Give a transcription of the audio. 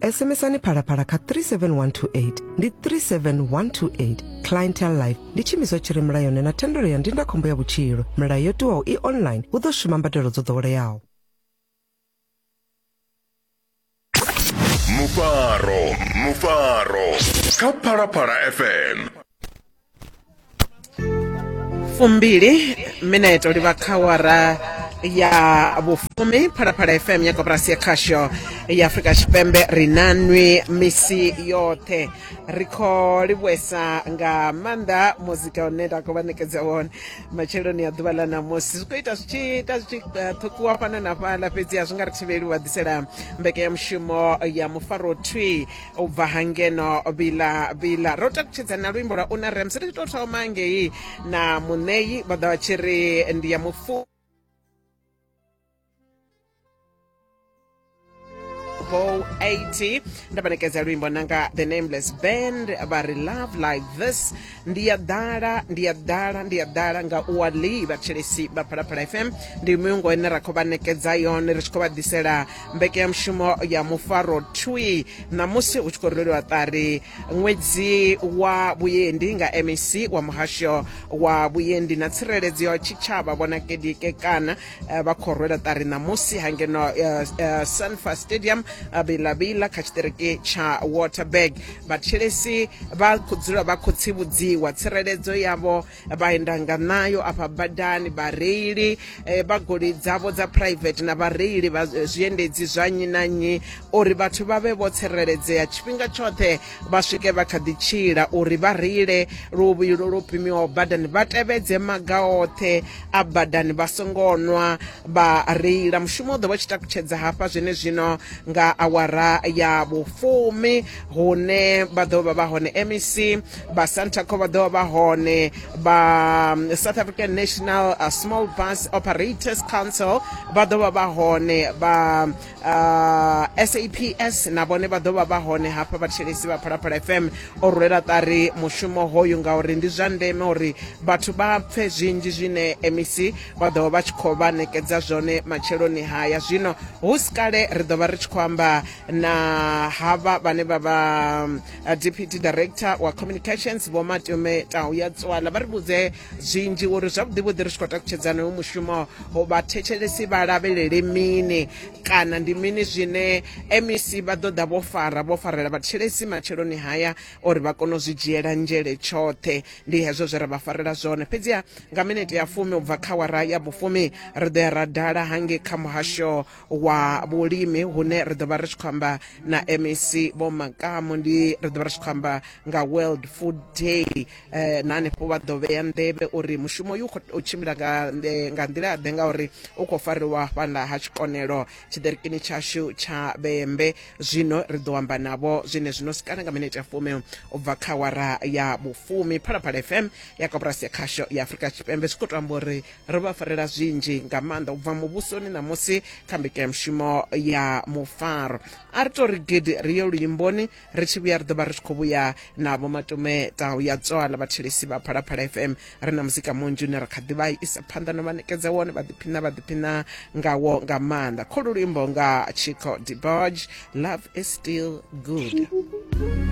SMSani phalaphala kha 37128 ndi 37128 clientele life ndi tshiimiswa tshi re mulayoni na thendelo ya ndindakhombo ya vhutshilo milayo yo tiwaho i online hu ḓo shuma mbadelo dzo ḓoweleaho mufaro mufaro kha phalaphala fm fumbili mineto li bva kha wara ya vhufumi phalaphala fm ya koporasi ya khasho ya afurika tshipembe ri na nwi misi yoṱhe ri khou livhuesa nga maanḓa muzika une nda khou vha ṋekedza wone matsheloni a ḓuvha ḽa ṋamusi zwi khou ita zwi tshi ita zwi tshi eh, ṱhukuwa fhano na fhaḽa fhedzi a zwi nga ri thivheli u vha ḓisela mbekanyamushumo ya mufaro thwi u bva ha ngeno bila bila ro takutshedza na luimbo lwa una rems ri tshi tou thoma ngei na muṋeyi vha ḓa vha tshi ri ndi ya mufu Bo 80 nda vha ṋekedza luimbo nanga the nameless band vha ri love like this ndi ya ḓala ndi ya ḓala ndi ya ḓala nga u wa lee vhathetshelesi vha phalaphala fm ndi muyungo ine ra khou vha ṋekedza yone ri tshi khou vha ḓisela mbekanyamushumo ya mufaro twi ṋamusi hu tshi khou rweliwa ṱari ṅwedzi wa vhuendi nga mec wa muhasho wa vhuendi na tsireledzo ya tshitshavha vhona kedike kana eh, vha khou rwela ṱari ṋamusi ha ngeno eh, eh, sunfa stadium bilavila kha tshiṱiriki tsha waterberg vhatshelesi vha khou dzula vha khou tsivhudziwa tsireledzo yavho vha enda nga nayo afha badani vhareili vha goloi dzavho dza private na vhareili vha zwiendedzi zwa nnyi na nnyi uri vhathu vha vhe vho tsireledzea tshifhinga tshoṱhe vha swike vha kha ḓi tshila uri vha reile luvhilo lwo pimiwaho badani vha tevhedze maga oṱhe a badani vha songo nwa vha reila mushumo u ḓo vha tshi takutshedza hafha zwenezwino nga awara ya vhufumi hune vha ḓo vha vha hone mec vha santaco vha ḓo vha vha hone vha um, south african national uh, small bus operators council vha ḓo vha vha hone vha uh, saps na vhone vha ḓo vha vha hone hafha vhathetshelesi vha phalaphala fm o rulela ṱari mushumo hoyu ngauri ndi zwa ndeme uri vhathu vha pfe zwinzhi zwine mec vha ḓo vha tshi khou vha nekedza zwone matsheloni haya zwino hu si kale ri ḓo vha ri tshi khou amba na havha vhane vha vha uh, deputy director wa communications vho matume tau ya tswala vha ri vhudze zwinzhi uri zwavhuḓi vhuḓi ri tshi khou takutshedzana hoyu mushumo vhathetshelesi vha lavhelele mini kana ndi mini zwine mec vha ḓo ḓa vho fara vho farela vhathetshelesi matsheloni haya uri vha kone u zwi dzhiela nzhele tshoṱhe ndi hezwo zwe ra vha farela zwone fhedziha nga minete ya fumi u bva kha wara ya vhufumi ri ḓo ya ra dala hangei kha muhasho wa vhulimi hune ri ḓo vha ri tshi khou amba na mec vho makamu ndi ri ḓo vha ri tshi khou amba nga world food day eh, na hanefho vha ḓo vhea nḓevhe uri mushumo uyu u khou tshimbila nga nḓe- nga nḓila ḓe ngauri u khou fariwa fhaḽa ha tshikonelo tshiḓerikini tshashu tsha vhembe zwino ri ḓo amba navho zwine zwino sikana nga minete ya fumi u bva kha wara ya vhufumi phalaphala fm ya koporasi ya khasho ya afurika tshipembe zwi khou to amba uri ri vha farela zwinzhi nga maanḓa u bva muvhusoni ṋamusi kha mbekanyamushumo ya mufaro a ri to ri gidi ri ye luimboni ri tshi vhuya ri ḓo vha ri tshi khou vhuya na vho matume tau ya tswala vhathelesi vha phalaphala fm ri na muzika munzhi une ra kha ḓi vha isa phanḓa no vha nekedza wone vha ḓiphina vha ḓiphina ngawo nga maanḓa kholu luimbo nga chico deboj love is still good